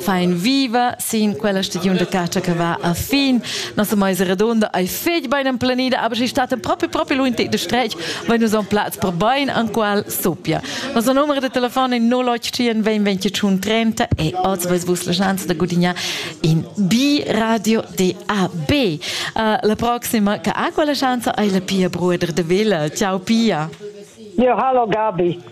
Fein viva sin quella stagiun de catscha che va a fin. Nossa meisa redonda ei fetg bein emplanida, aber sie staten proprio proprio lui de strech, weil nous on platz per bein an qual sopia. Nossa numero de telefon è 081 20 30 e oz vais vus la chance de gudignare in B Radio DAB. Uh, la prossima che ha quella chance è la Pia Bruder de Villa. Ciao Pia. Ja, hallo Gabi.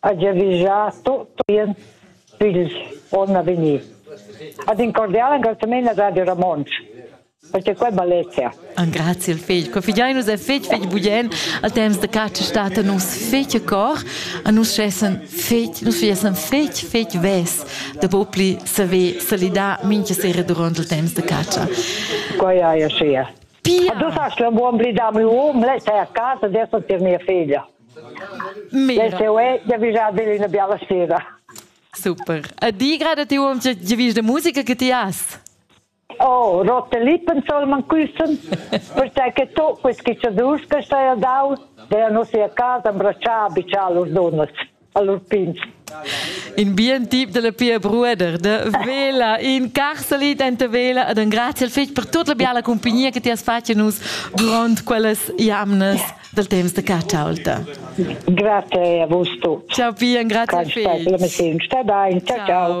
Ha giavischà tut in figl onn a vegnir. Ad in cordial engraziament a Radio Ramontsch perché quel balletia. Engrazia il figl. Co figiai nus e figl figl bugen al temps de caccia stata nus figl cor a nus schessen figl nus fiesen figl figl ves de popli saver salidar minche sera durant il temps de caccia. Quai hai sia. Pia. Du sas la buon blidar mio um, lei sei a casa, adesso tir mia figlia. Dastau ei giavischar dil ina biala sera. Super. E di gerade ti uom giavisch de musica che ti has? Oh, rote lippen soll man küssen, perché tu questi chicciadurs che stai a dau, der non sia casa abbracciar abbicar los donnas, a lur pins. In bien tip della Pia Brueder, de vela in carsalit enta vela ed un grazie al fetg per tutta la biala compagnia che ti has fatto nus durant quellas jamnas. dal temps da ca chaulta. Grazie a vus tu. Ciao Pian, grazie Phil. Sta bene, ciao. ciao.